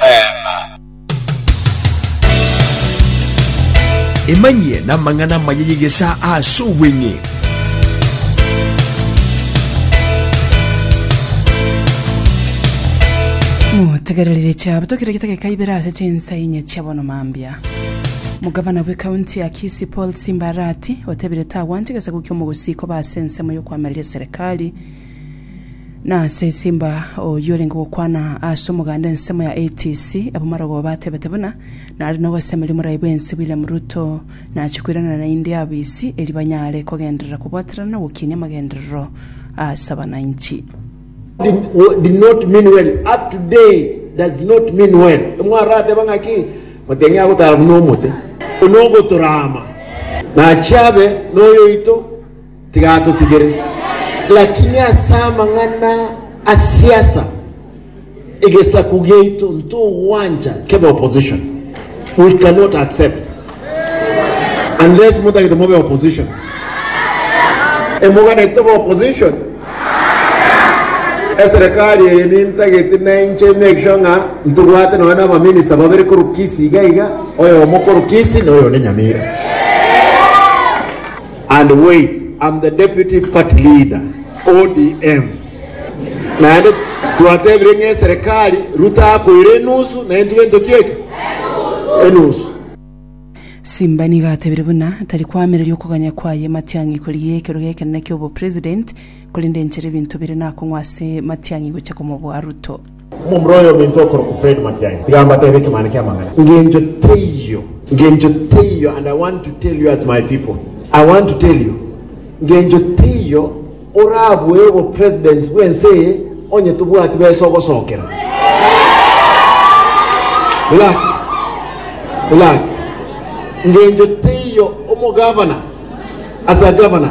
Amen. Emanyie n'amang'ana amaya y'egesaa ase obweng'e. Motegererire chiabo tokire gitageka ibere ase chinsa inye chia bono mambia. Mugavana bwe kaunti ya Kisii Paul Simba Arati otebire tagwanche gesaku kia omogusii koba ase ensemo y'okoamereria serikali Na ase esimba oyio orenge gokwana ase omoganda ensemo ya ATC, abamarogoo batebete buna nare nogosemeria omorai bwensi William Ruto nachia koiranana naende abo isi eri banyare kogenderera kobwaterana na ogokinia amagenderero ase abananchi. did, wa- did not mean well up to day does not mean well mwarateba ng'aki moteng'e agotara buna omote onogotorama nachiabe noyoito Tiga atotigere. Lakini ase amang'ana a siasa, egesaku giaito ntogwancha kebe opposition. We cannot accept. Unless motagete mobe opposition. Emoganete tobe opposition? Eserekari eye nintagete nainche make sure ng'a ntobwate nonya na abaminista babere korwa Kisii iga iga, oyomo korwa Kisii na oyo onde Nyamira. And wait, I'm the deputy party leader, ODM. Naende twatebire ng'a eserekari Ruto akoire enusu na intwe entoki eke? Enusu. Simba nigo atebire buna tari koamereria okoganya kwaye matiang'i korigia ekerogo ekenene ki'obopresident, korende enchera ebinto bire nakong'wa ase matiang'i gocha komoboa Ruto. Omomura oye ominto okorokwa Fred Matiang'i tiga mbatebe ekemane ki'amang'ana. Engencho teiyo, engencho teiyo and I want to tell you as my people, I want to tell you engencho teiyo orabue obo presidents bw'ense eye onye tobwati besa ogosokera. Relax, relax. Engencho teiyo omo governor as a governor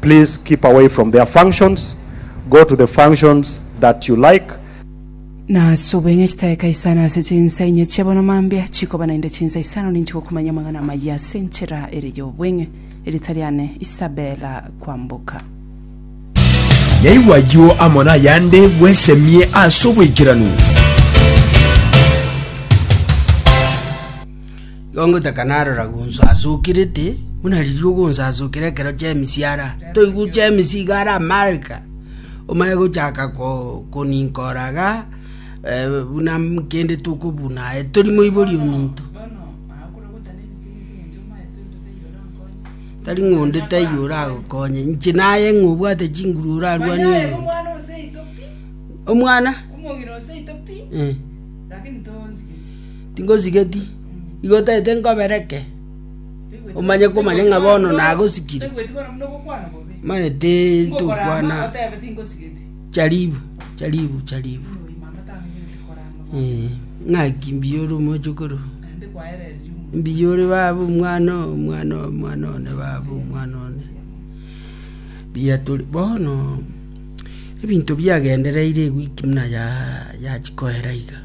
please keep away from their functions go to the functions that you like. Na ase obweng'e chitaeka isano ase chinsa inye chia bono mambia, chikoba naende chinsa isano ninche gokumanya amang'ana amayia ase enchera ere y'obweng'e. Erieta riane Isabella Kwamboka. Naigwe ayio amo nayande bwesemie ase oboikeranu. Igo ngotaka narora gonsasokerete, buna riria ogonsasokera ekero chi'emisiara, toigwa chi'emisi iga are amarika, omanye gochaka koninkora iga buna kende tokobuna aye tori moibori ominto. Tari ng'a onde taiyo oragokonye, inche naye ng'a obwate chinguru orarwane oyo. Omwana? Tingosigeti, igo otagete nkobereke, omanye komanya ng'a bono nagosikire. Maya ti tokwana charibu, charibu, charibu, eh, ng'aki mbuya ore omochokoro, mbuya ore baba omwana oo, omwana oo, omwana one baba, omwana one. Mbuya tori bono, ebinto biagendereire ewiki buna ya- yachikoera iga.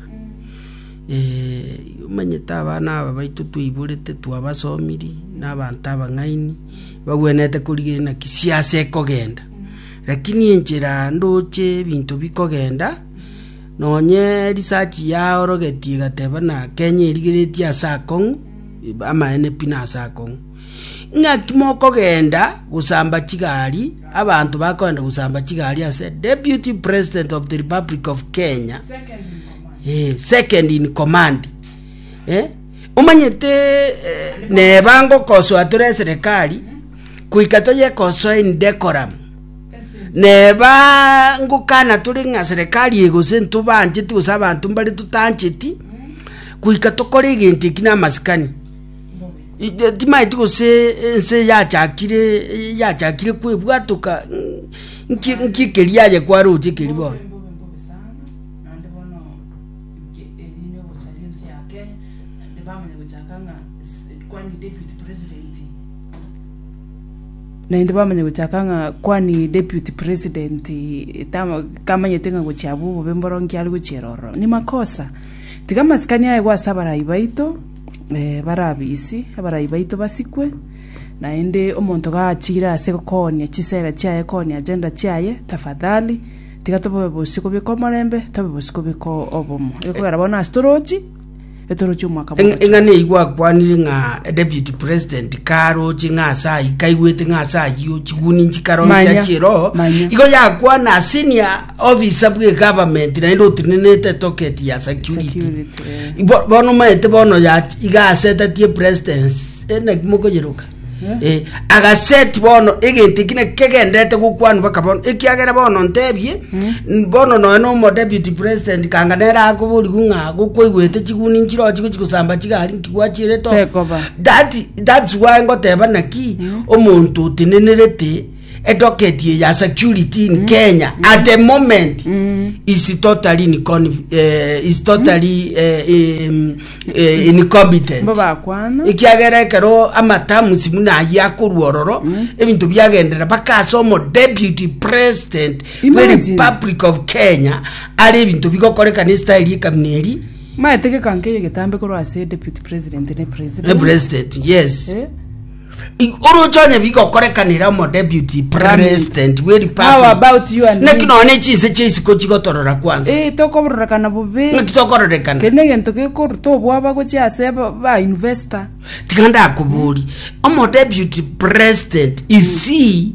omanyete abana aba baito twaiborete twabasomiri, nabanto abang'aini, bagwenerete korigererania gisiase ekogenda. Rakini enchera ndoche ebinto bikogenda, nonye research yaorogetie egateba buna kenya erigeretie ase akong'u, amaene pi nase akong'u. Ng'aki mokogenda gosamba chigari, abanto bakogenda gosamba chigari ase deputy president of the republic of Kenya. Eh, second in command. Eh? Omanyete eh, neba ngokosoa tore eserekari kuika toyekosoa in decorum. Neba ngokana tore ng'a serekari egose ntobancheti gose abanto mbare totancheti kuika tokore egento eki namasikani. I- de- Timaeti gose ense yachakire yachakire kwebwatoka nki- nki ekeria aye kwaroche ekeri bono. Naende bono inche erinde ogosaria ense ya Kenya, naende bamanya gochaka ng'a kwani deputy president naende bamanya gochaka ng'a kwani deputy president tama kamanyete ng'a gochia abwo obobe mboro nki are gochiera ororo. Ni makosa, tiga amasikani aegwe ase abarai baito, bare abisi, abarai baito basikwe, naende omonto gachiire ase gokoonia chisera chiaye koonia agenda chiaye, tafadhali. Tiga tobe bosio kobeka omorembe, tobe bosio kobeka obomo. Ekogera bono ase torochi, etorochi omwaka Eng- bw'omochie. eng'ana eyi gwakwanire ng'a deputy president karoche ng'a ase ayio kaigwete ng'a ase ayio chiguni nchikaroche Manya, chiroho manya. igo yakwana senior officer bwe government naende otenenete toket ya security Security, eh. Bo- bono maete bono ya- iga asetatie presidence eh, naki mokoyeroka Eh, agaseti bono egento eki nekegendete gokwanwa baka bono ekiagera bono ntebie n- bono noe nomo deputy president kanga nere akoborigu ng'a gokwaigwete chiguni nchirochi gochi gosamba chigari nkigwachirete oo. Tekoba. That- that's why ngoteba naki omonto otenenerete Edocket ye ya security in Kenya at the moment is totally in con- eh, is totally eh, in- eh, incompetent. Mbo bakwana. ekiagera ekero amatamusi muna aye akorwa ororo ebinto biagendera baka ase omo deputy president we Imagine. republic of kenya ari ebinto bigokoreka ne style yekamina eri Maete gekankeyo getambe korwa ase deputy president ne ne president. president yes Eh? oroche onye bigokorekanera omo deputy president bwe republic naki nonya ne chinse chia isiko chigotorora kwanza ee tokororekana bobe naki tokororekana kende egento gekoruta obwaba gochia ase ba investor tiga ndakobori omo deputy president is he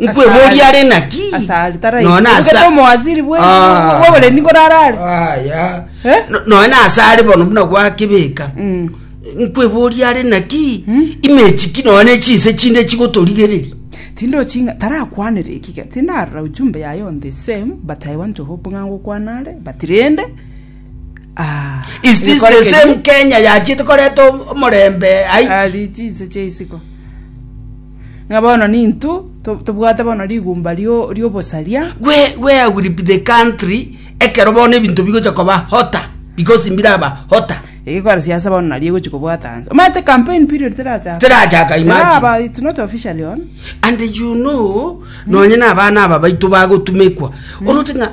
Nkweboria are naki? asari tara Nona asa- Ogete omowaziri bwe- Ah. bw'oboremi nkorarare Aya. Eh? No- Nonya ase are bono buna gwakebeka. Mm. Nkweboria are naki? Imechi ki nonya chinse chinde chigotorigereria. tindochinga tarakwanere ekige tindarora ujumbe yaye on the same but i want to hope ng'a ngokwanare but rende ah, Is this ngekore the keri- same Kenya yachete koreta omorembe aiki? ari chinse cheisiko Ng'a bono nintwe tobwate bono rigumba ri'obosaria. Where I will be the country, ekero bono ebinto bigocha koba hotter, because mbiraba hotter. Egekora siasa bono naria egochi kobwata anse. Omanyete campaign period terachaka. Terachaka imagine. Teraba, it's not officially on. And you know, nonye na abana aba baito bagotumekwa. Oroche ng'a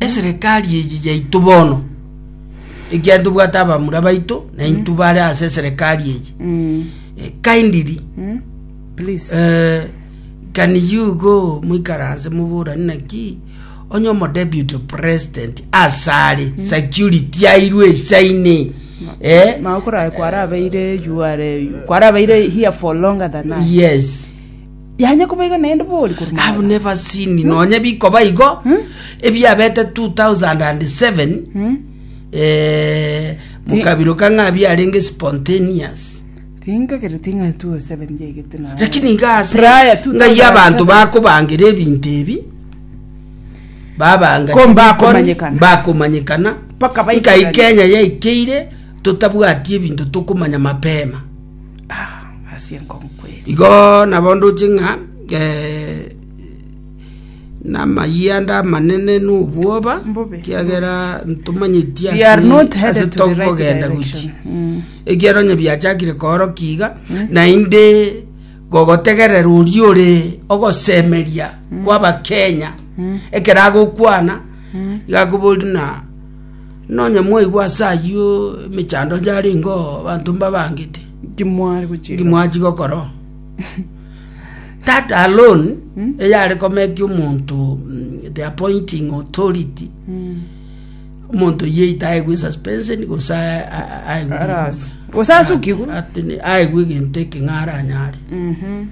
Eserekari eye yaito bono, ekiagera tobwate abamura baito, na intwe bare ase eserekari eye. Eh, Kindly, Please. eh, can you go moikaranse moborani naki onye omo deputy president asare security airwe isaine eh? Maokora kwarabeire you are kwarabeire here for longer than I. yes Yanya koba igo naende bori korwa Have magoro. never seen me. Nonye bikoba igo ebiabete 2007 Hmm? eh, mokabiro ka ng'a biarenge spontaneous Tinkagereti ng'a 207 yaigete na. lakini iga ase Prior to ng'ai 2007. abanto bakobangira ebinto ebi babanga Ko mbakomanyekana. bakomanyekana Mpaka baike ngai bari- kenya yaikeire totabwati ebinto tokomanya mapema Ah, ase enkong'u kweri. Igo nabo ndoche ng'a eh, namayianda amanene n'obwoba Mbobe. kiagera ntomanyeti We are not ase headed to the right tokogenda guti direction. Mm. ekiagera onye biachakire kooroka iga naende gogotegerera oria ore ogosemeria kw'abakenya ekero agokwana iga akobori na Nonye mwaigwa ase ayio emechando yarengeo abanto mbabangete, Inki mware gochia inki mwachi gokora? That alone eyare komekia omonto mm, the appointing authority omonto yeita aegwe suspension gose a- a- aegwe Arasi. Gose asukigwe. atene aegwe egento ekeng'ara anyare Mhm.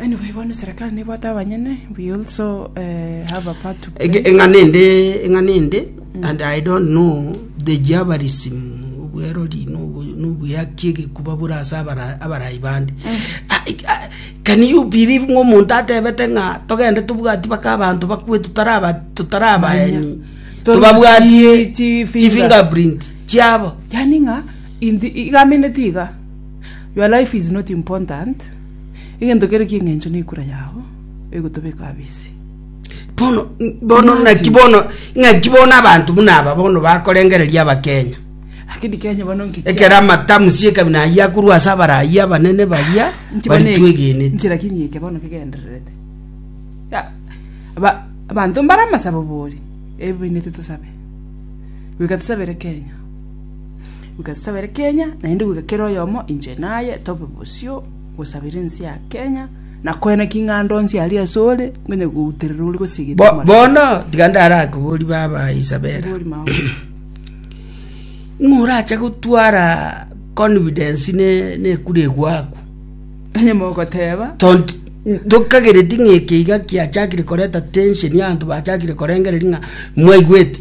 Anyway, bono serikali nebwate abanyene, we also eh, have a part to play. Ege- eng'ana ende eng'ana ende and i don't know the jabarism obwerori nobu- nobuyaki egekuba bore ase abara- abarai bande Ah, i- ah, can you believe ng'a omonto atebete ng'a togende tobwati baka abanto bakwe tutaraba tutarabaeni Tore tobabwatie chi- chi fingerprint. chifingerprint chiabo Yani ng'a indi- igameneti iga Your life is not important, egento kere ki'engencho nekura yao egotobeka abisi. Bono bono Imagine. naki bono ng'aki bono abanto buna aba bono bakorengereria abakenya Lakini Kenya bono nkikia- ekero amatamusi ekabina ayia akorwa ase abarayi abanene baria Nki bono eki- baritwegenete nki lakini eke bono kegendererete Ya, aba- abanto mbare amasabo bori ebibainete tosabe goika tosabere kenya Nkasabere Kenya, naende goika kera oyomo inche naye tobe bosio gosabera ense ya Kenya, na koena king'ando onsi aria asore, ngonya gouterera ore gosegete Bo- omorero. bono tiga ndare ake bori baba isabera Bori mao. ng'orache gotwara confidence ne nekure egwaku Onye mogoteba, Tont- tokagereti ng'a eke iga kiachakire koreta tension ya abanto bachakire korengereria ng'a mwaigwete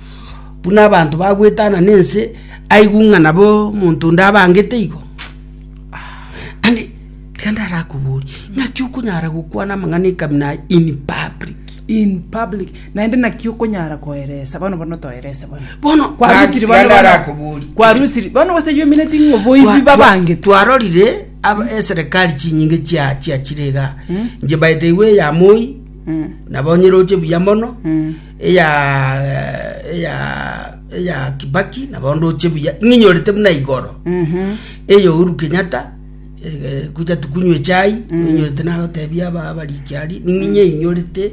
buna abanto bagwetana nense aigwe ng'a nabo omonto onde abangete igo. Ande reka ndarakoborie, ng'aki okonyara gokwana amang'ana ekamina aya in public? in public naende naki okonyara koeresa bono bono toerese bono Bono kwarusiri bono bono ndarakoborie. kwarusiri bono goseywo emineti ng'o Twa- boibi twa- babangete twarorire aba- eserikali chinyinge chia- chiachire iga nche baete igo eyamoi nabo nyeroche buya mono eya Kibaki nabo ndoche buya ng'inyorete buna igoro eya Uhuru Kenyatta gocha tukunywe chai ng'inyorete nagotebia abarikiari ning'inye inyorete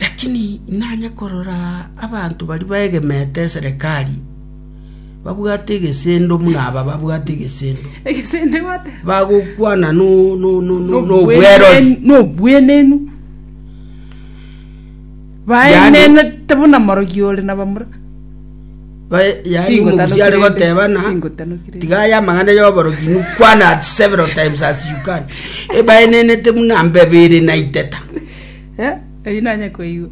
lakini nanya korora abanto bari baegemete serikali babwate egesendo buna aba babwate egesendo egesende gote bagokwana no no no no nobwerori nobwenenu Baenenete buna morogi ore na bamura. Bae- yaani Tingo tano omogusi are kirende, goteba na tingo tano kirende. tiga aya amang'ana y'oborogi nu kwan at several times as you can ebaenenete buna mbebe ere na iteta Eh, eyio nanye koigwa.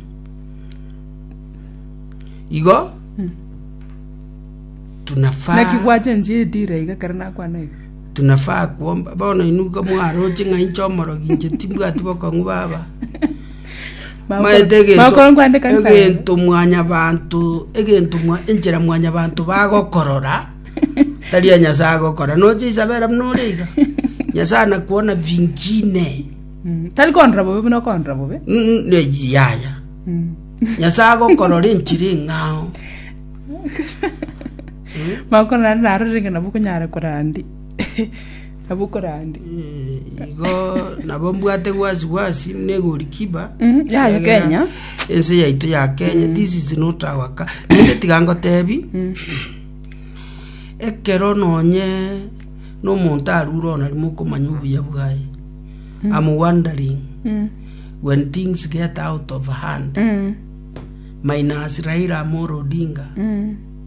igo tunafaa Naki gwachenchia edira iga kare nakwana iga. Tinafaa kwomba. Bono inwe igo mwaroche ng'a inche omorogi, inche timbwati bokong'u baba. Maete egento- Bakoro nkwandeka nsa. egento mwanyabanto egento mwa- enchera mwanyabanto bagokorora tari ya nyasae agokora noche isabera buna ore iga nyasae anakuona vingine Mm. Tari kondora bobe buna okondora bobe. Mm, ne- yaya Mm. nyasae agokorora enchera eng'ao Makorora naro renge nabo okonyara korandia. Nabo okorandia. Eh, igo nabo mbwate gwasi gwasi muna egorikiba Mm, yaye Kenya. ense yaito ya kenya this is not our ka nende tiga ngotebi ekero nonye nomonto arure ona rimo okomanya obuya bwaye am wondering Mm. when things get out of hand Mm. minus raila amoro odinga Mm.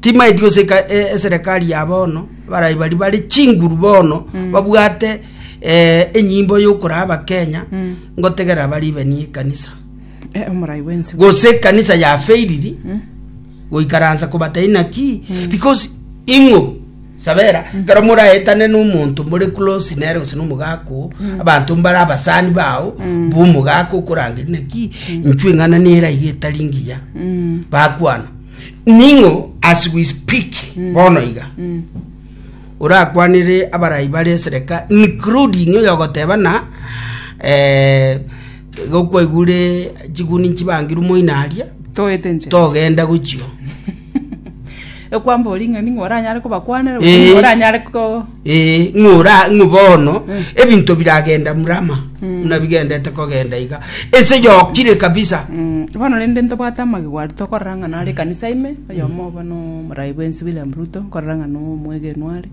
timaeti goseka e- eserekari ya bono barai bari bare chinguru bono babwate eh, enyimbo yokoraa abakenya ngotegerera baribenie ekanisa Eh, omorai bwensi gose ekanisa yafeiriri goikaransa kobatari naki because ing'o Sabera, ekero moraetane nomonto more close nere gose nomogaaka oo, abanto mbare abasani bao b'omogaaka okorangeria naki inchwe eng'ana nere aiga etari ngiya bakwana ning'o as we speak bono iga orakwanere abarai bare esereka including oyo ogoteba na eh, gokwaigure chiguni nchibangire omoina aria Toete nche. togenda gochio Ekwambora ing'ana ning'o oranyare kobakwanera gose ning'o Eh. oranyare ko... Eh, ng'ora ng'o bono ebinto biragenda murama buna bigendete kogenda iga ense yokire kabisa Mm, bono rende ntobwate amagego aria tokorora ng'a nare ekanisa ime oyomo obo no omorai bwensi William Ruto nkorora ng'a no omwegenwa are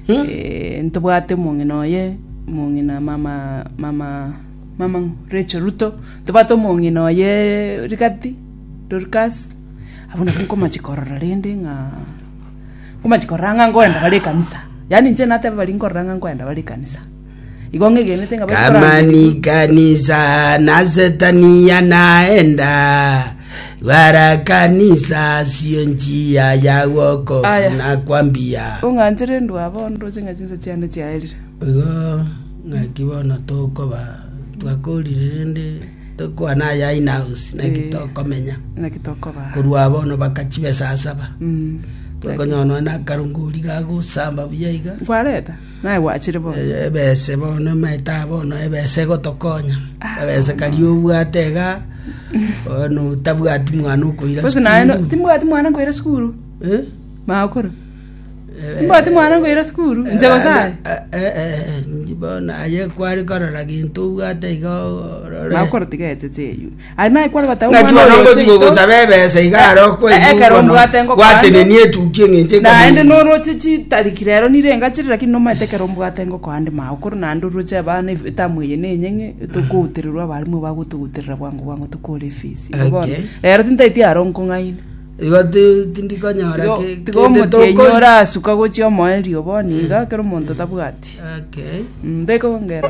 Hmm? Eh, ntobwate omong'ina oye omong'ina mama mama mama Rachel Ruto ntobwate omong'ina oye rigati Dorcas Abwo nabwo nkomachia korora rende ng'a, nkomachia korora ng'a nkorenda bare ekanisa. Yaani inche nateba baria nkorora ng'a nkorenda bare ekanisa. Igo ng'egenete ng'a baitu korang'ana Kama ni kanisa na setani yanaenda, gwara kanisa asio nchia ya wokofu Aya. nakwambia. ong'anchere ndwa bondo oche ng'a chinsa chiane chiaerire. Igo ng'aki bono tokoba twakorire rende Tokwana aya in house, naki Eh. tokomenya. naki tokobaa Korwa abono baka chibesa asaba. Mm. Tokonyora nonya na akarungori gagosamba buya iga. kwareta naye gwachire bo Eh, Ebese bono maete abono ebese gotokonya. Ah. Ebese kari obwate iga. Ono tabwati mwana okoira. bose naye no- sukuru. timbwati mwana nkoira sukuru Eh? makoro Mbwati mwana ngoira sukuru, inche gose aye? Inche bono aye kwari korora gento obwate iga orore. Nabo korwa tiga eche cheywe. Aye naye kware goteba Ng'aki omwana bono oyo ngochi seito, gogosaba ebesa iga aro Eh, okoigwa ekero bono mbwate ngo gwatenenia etuki eng'encho naende ekamenya. noroche chitariki rero nire engachire lakini nomaete ekero mbwate ngo koande mao koro naende oroche abana ef- etamu eye na eye ng'e tokoutererwa abarimu bagotogoterera bwango bwango tokore efisi Igo bono Okay. rero tintaeti aro nkong'aini Igo tindikonyora tiga omote enyora asuka gochia omoerio bono iga ekero omonto tabwati okay mbeka ongera